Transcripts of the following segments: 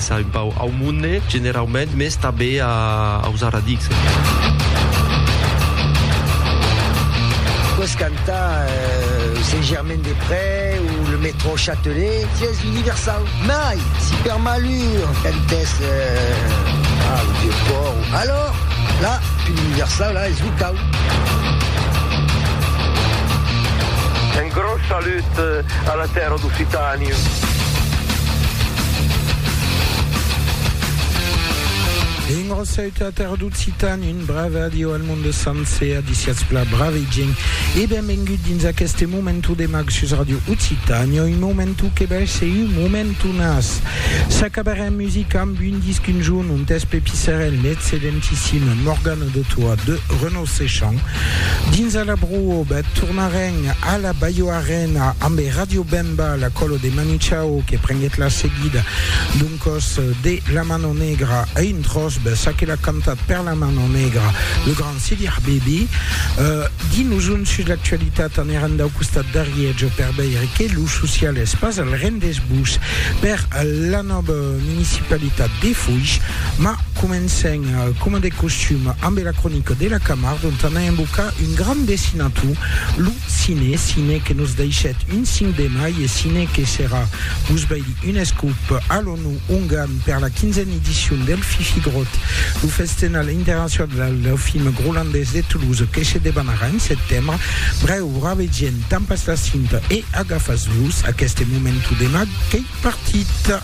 S'a un pauc au monde generaument, mès tanben aus aradics. Pòs cantar Saint-Germain-des-Près o le Métro Châtelet, sièis universau. Mai, si per malur cantès au Vieux-Pòrt, alòr, la, pus universau, la, es locau. Un gròs salut a la. La tèrra d'Occitània. Engrosèt la tèrra d'Occitània, un brave adieu al monde sancer, adiciatz pla brave gent e benvengut dins aqueste momentu de mag sus Radio Occitània, un momentu que bèsh se un momentu nas. S'acabarè en musica amb un disc un jorn ont eth Pepi Serrèn, l'excedentissim Morgana de Toa de Renaud Seschan, dins a la Brohobèth, tornarem a la Baioara, Rena amb Radio Bemba, la colo de Manu Chao que prenguèt la seguida d'un còs de La Mano Negra a un tròç ben ça que l'a cantat per La Mano Negra lo grand Sidi Habibi. Di-nos un sus l'actualitat anerant dau costat d'Ariètge per veire que lo social es pas al rendesbús per la nòva municipalitat de Foish. Ma comencem coma de costum ambe la cronica de la Camarde ont anà embocar un grand dessinator, lo Cine, cine que nos deishèt un 5 de mai e cine que serà vos veir un escop a l'ONU Ungarn per la quinzena edicion del Fifi Grot, lo festenal internacional dau film grolandés de Toulouse que se debanarà en setembre. Brèu, bravedien, tampas la cinta e agafas-vos aqueste momentu de mag qu'ei partit.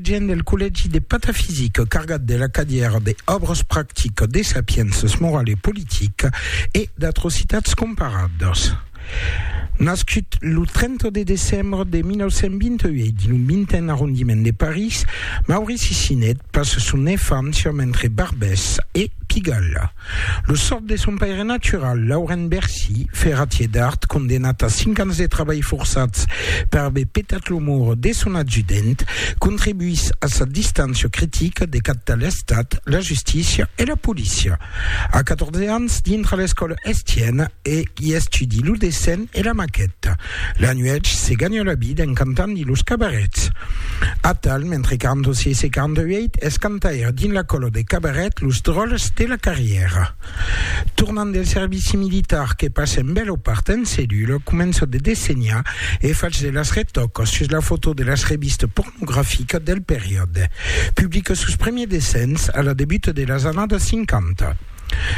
Gent del collègi de patafisica cargat de la cadièra de Òbras practicas de sapiénças morala e politica e d'atrocitats comparadas. Nascut lo 30 de decembre de 1928 dins lo vintèn arrondiment de París, Maurici Sinet passa son enfància mentre Barbès e Pigalle, Lo sòrt de son paire natural, Laurent Bercy, ferratier d'Art, condemnat a cinc ans de trabalh forçats per aver petat lo moro de son adjudent, contribuís a sa distància critica de cap de l'Estat, la justícia e la polícia. A 14 ans, dintra l'escòla Estienne, i estudi lo dessin e la maqueta. La nuèch se ganha la vida en cantant dins los cabarets. Atal, mentre qu'en 248 es cantaire dins la còla de cabaret Los Dròlles de la Carrièra. Tornant del servici militar que passa en bèl opart en cellula, comença de dessenhar e fach de las retòcas sus la fotò de las revistas pornograficas del periòde. Publica sos premiers dessins a la debuta de las annadas 50.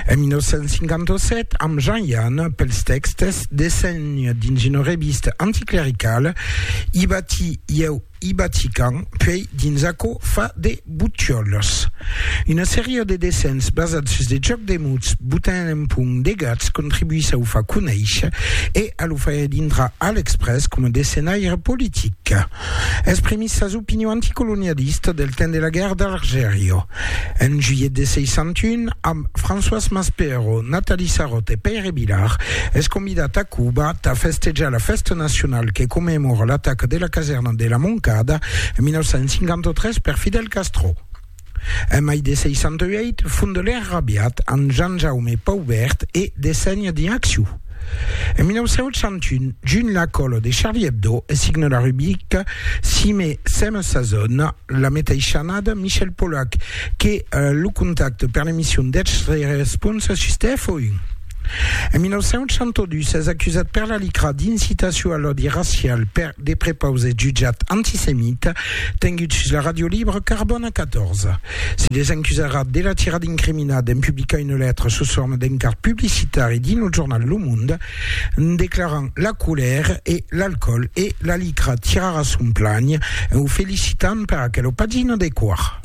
En 1957, amb Jean Yanne, pels tèxtes Dessenhs dins una revista anticlericala, I bati ieu, i bati Can, puèi dins Aquò fa de butiòlas. Una seria de dessenhs basats sus de jòcs de mots botant en punt de gats contribuís a o far conéisher e a lo faire dintrar a l'Express coma dessenhaire politic. Exprimís sas opinions anticolonialistas del temps de la guèrra d'Algèria. En juilhet de 61, amb Françoise Maspero, Nathalie Sarraute e Pèire Vilar, es convidat a Cuba tà festejar la fèsta nacionala que commemora l'ataca de la casèrna de la Moncada en 1953 per Fidel Castro. En mai de 68, fondelèr rabiat amb Jean-Jaume Paubert e Dessegne dins Acciu. En 1901, junh la còla de Charlie Hebdo e signe la rubrica Cime Seme sa zòna, la meteishanada Michel Polac que lo contacte per l'emission deth Respons sus TF1. En 1902 s'es acusat per la LICRA d'incitacion a l'òdi racial per de prepaus es jutjat antisemit tengut sus la ràdio libre Carbòna 14. Se desencusarà de la tirada incriminada en publicar una letra sus forma d'encart publicitari dins lo jornal Le Monde declarant la colèr e l'alcòl e la LICRA tirarà son planh en o felicitant per aquela pagina de quòr.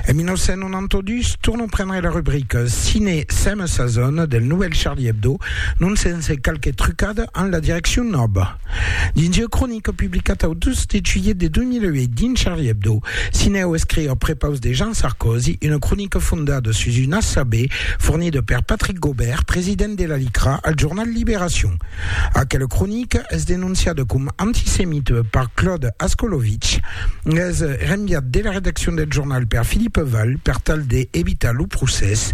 En En un todus, tornam prendre la rubrica Cine Seme Sazon del novèl Charlie Hebdo, non sense qualque trucada en la direccion nòva. Dins ua cronica publicata au 2 de juilhet de 2008 dins Charlie Hebdo, Cineo escriu a prepaus de Jean Sarkozy una cronica fondada sus un ASAB fornida per Patrick Gaubert, president de la LICRA, al jornal Libération. Aquela cronica es denonciada com Antisemit per Claude Ascolovitch es renviat de la redaccion del jornal per Philippe Val per tal de evitar lo procès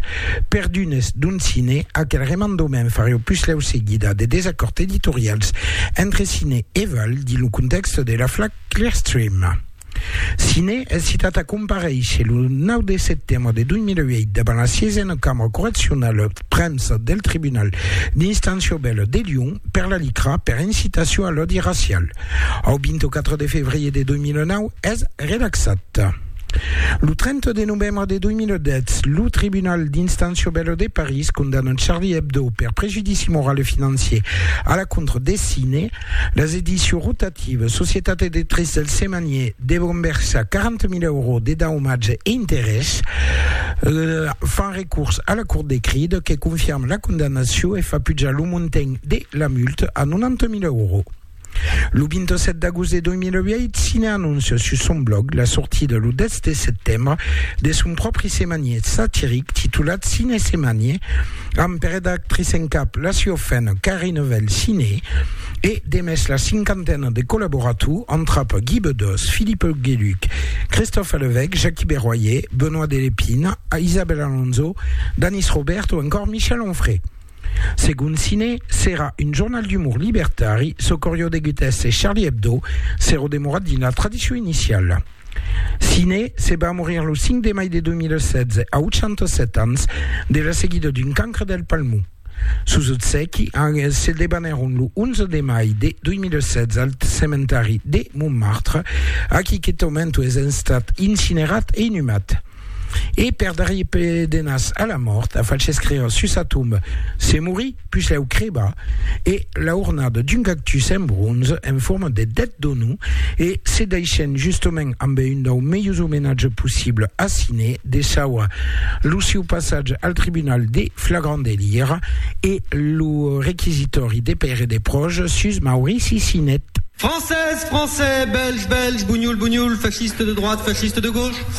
per d'unes d'un cine. Aquel remandament fareu puslèu seguida de desacòrds editorials entre cine e Val dins lo contèxte de l'afla Clearstream. Sine es citat a comparéisher lo 9 de setembre de 2008 davant la siesena cambra correccionala premsa del tribunal d'instància obèla de Lyon per la LICRA per incitacion a l'òdi racial. Au 24 de febrier de 2009 es relaxat. Lo 30 de novembre de 2010, lo tribunal d'instància obèla de París condamna Charlie Hebdo per prejudici moral e financier a la contra de Sine, Las edicions rotatives, Societat Editrice del Semanier, devon versar 40.000 euros de daumatge e interès, fan recurs a la Cort de Cride que confirma la condamnacion e fa pujar lo montant de la multa a 90.000 euros. Lo 27 d'agost de 2008, Cine anóncia sus son blòg la sortida lo 10 de setembre de son pròpri semanier satiric titulat Cine Semanier, Amb per eda actrice en cap la siofèna Carine Velciné e de mès la cinquantena de collaborators antrap Guy Bedos, Philippe Hugueluc, Christophe Levèque, Jacqui Berroyer, Benoît Delépine, Isabelle Alonso, Danis Robert o encòr Michel Onfray. Segon Ciné, serà un jornal d'umor libertari, çò qu'aurió degut èsser Charlie Hebdo s'auró demorat dins la tradicion iniciala. Siné se va morir lo 5 de mai de 2016, a 87 ans, de la seguida d'un cancre del palmon. Sos obsèqui se debanèron lo 11 de mai de 2016 al cementari de Montmartre, aquí qu'eth aumento es estat incinerat e inhumat. E per darrier pedenas a la mòrt, a falh escréer sus sa tomba, Se morí, pus lèu crebar, e la ornada d'un cactus en bronze en forma de dèt d'onu, e se deishèn justement amb un dau melhus omenatge possible a Siné, desaura lo sieu passatge al tribunal de flagrant delir e lo requisitòri de pair e de pròche sus Maurici Sinet. Francés, francés, belge, belge, bunhol, bunhol, fasciste de droite, fasciste de gauche.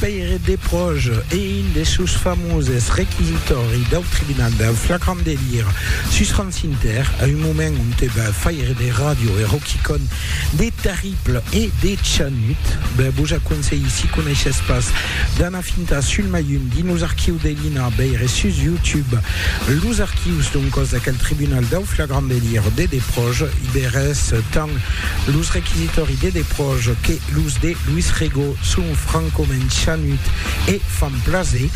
Pèire de Pròge e un des seus famoses requisitòri dau tribunal dau flagrant delir sus Ran Sinter, a un moment onte va faire de ràdio e roquicòn de terrible e de chanut. Ben, vos aconselhi, si coneishètz pas, d'anar fintar sul mai un di nos archius de l'INA, veire sus YouTube los archius d'un còs d'aquel tribunal dau flagrant delir de de Pròge, i veretz tant los requisitòri de de Pròge que Los de Luis Rego son francament chanut e fan plaser.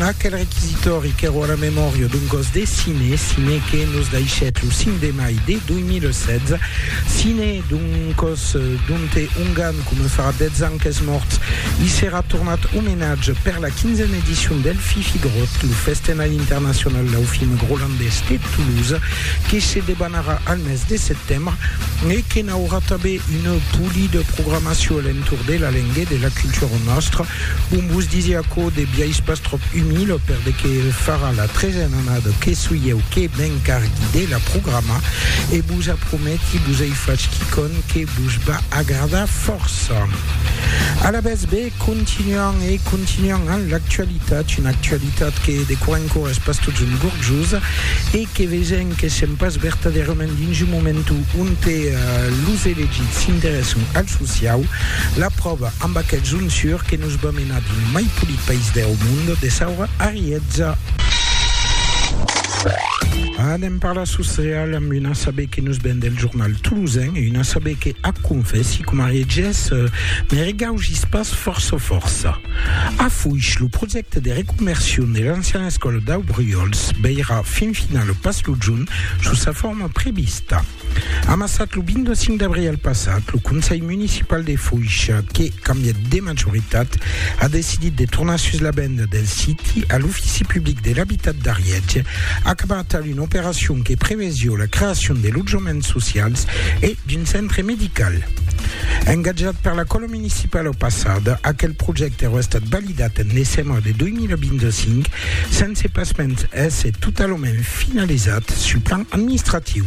Aquel requisitòri qu'èra a la memòria d'un gòs de cine, cine que nos daishèt lo 5 de mai de 2016, cine d'un còs donte un gan coma farà 10 ans qu'es mòrt, i serà tornat omenatge per la 15a edicion del Fifigròt, lo festenal internacional dau film grolandés de Toulouse, que se debanarà al mes de setembre e que n'aurà tanben Une poli de programacion a l'entorn de la lenga e de la cultura nòstra. Bon, vos disi aquò de biais pas tròp umil, per de que farà la tresen annada que soi ieu que m'encargui de la programar, e vos aprometi, vos ei fach quicòm que vos va agradar fòrça. Alavetz, be, Continuam e continuam amb l'actualitat, una actualitat que de quò en quò es pas totjorn gorjosa e que vesèm que sèm pas vertadèrament dins un moment onte los elegits s'interèssan al sociau, la pròva amb aquel Zonsur que nos va menar dins mai polit país deu mond, de Saura a Rièza. Anem parlar sociau. Madame, un asabe que nos ven del jornal toulousain e un asabe que, ac confèssi, coma regés, me regaugís pas fòrça fòrça. Afuish, lo projècte de reconversion de l'anciana escòla dau Bruòls veirà fin finala pas lo jorn sus sa forma prevista. Amassat lo 25 d'abrial passat, lo Conselh Municipal de Foish, que cambièt de majoritat, a decidit de tornar sus la venda del siti a l'Ofici Public de l'Abitat d'Ariètge, acabat a Una operacion que prevesió la creacion de lotjaments socials e d'un centre medical. Engatjat per la Cola Municipala au passat, aquel projècte aurà estat validat en decembre de 2025, sense pasmens èsser totalament finalizat sul plan administratiu.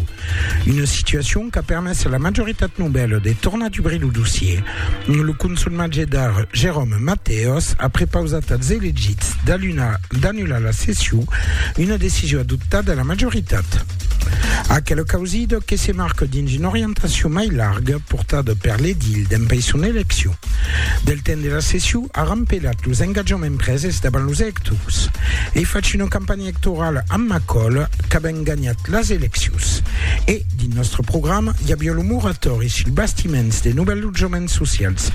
Una situacion qu'a permés a la majoritat novèla de tornar dubrir lo dossier. Lo conselh magier d'Ar, Jérôme Matteos, a prepausat als elegits d'anular annular la session, una decision adoptada a la majoritat. Aquela causida que se marca dins una orientacion mai larga portada per l'edil dempais son eleccion. Del temps de la session a rampelat los engatjaments preses davant los electors. Ei fach una campanha electorala amb Macol qu'avèm ganhat las eleccions. E, dins nòstre programa, i aviá lo moratòri sul bastiments de novèls lotjaments socials.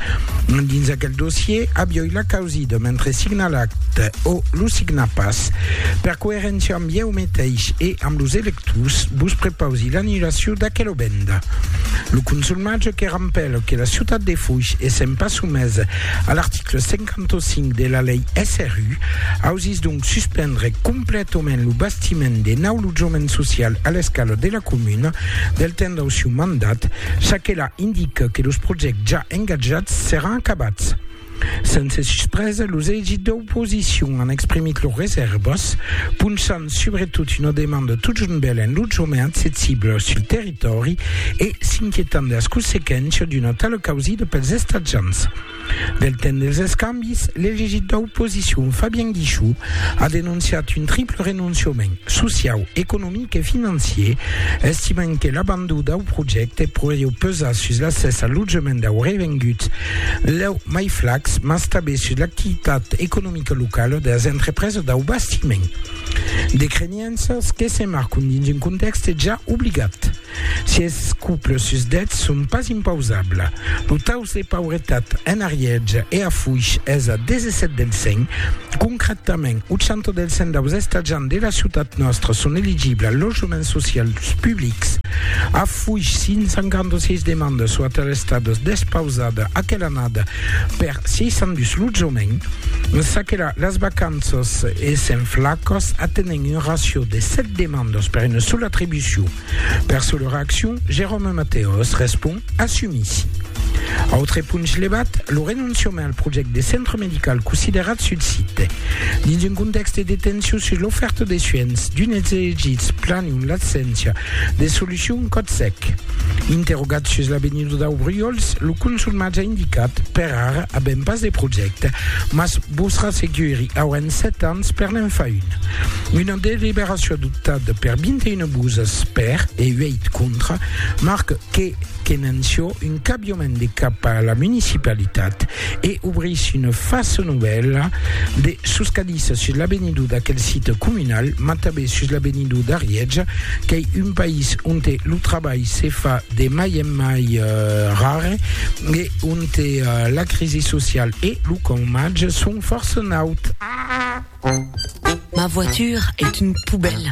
Dins aquel dossier aviá la Causido, mentre signa l'acte o lo signa pas. Per coeréncia amb ieu meteis e amb los electors, vos prepausi l'annulacion d'aquela venda. Lo consulmatge que rampèla que la ciutat de Foix essent pas somesa a l'article 55 de la lei SRU, ausís donc suspendre completament lo bastiment de nau lotjament social a l'escala de la comuna del temps dau sieu mandat, çaquelà indica que los projècts ja engatjats seràn acabats. Sense suspresa, los equips d'oposicion an exprimit lors resèrvas, ponchant subretot una demanda totjornbèl en lotjament accessible sul territòri e s'inquietant de las consequéncias d'una tala causida pels estatjants. Del temps dels escambis, l'elegit d'oposicion Fabien Guichou a denonciat un triple renonciament, sociau, economic e financier, estimant que l'abandon dau projècte podrieu pesar sus l'accès al lotjament dau revengut Lèu mai flac, mas tanben sus l'activitat economica locala de las entrepresas dau bastiment. De crenianças que se marcon dins un contèxte ja obligat. Si es cuples sus dètz son pas impausabla, lo taus de pauretat en ariètge e afuish es a 17 del 100. Concrètament, 80 del 100 daus estatjants de la ciutat nòstra son eligibla al lotjament social dus publics. Fuish 156 demandas o ater estadas despausada aquela annada per 602 lotjament. En çaquela, las vacanças èssen flacas, atenent un racio de 7 demandas per una sola atribucion. Per sa lor accion, Jérôme Mateos respond, Assumissi. Autre punch levat, lo renonciament al projèct de centre medical considerat sul site. Dins un contèxte de tension sus l'ofèrta de suènhs, d'unes elegits planion l'abséncia De solucion còth sec. Interrogat sus l'avenir dau Briols, lo consul mas a indicat, Per ara avèm pas de projècte, mas vos rasseguri, auèm 7 ans per n'en far un. Una deliberacion adoptada per 21 voses per e 8 contra marca que, que n'anciò un cabiament de cap a la municipalitat e obrís una fasa novèla de soscadissa sus l'avenidor d'aquel site comunal, mas tanben sus l'avenidor d'Arièja, qu'ei un país onte lo trabalh se fa de mai en mai rare e onte la crisi social e lo caumatge son fòrça naut. Ma voiture est une poubelle.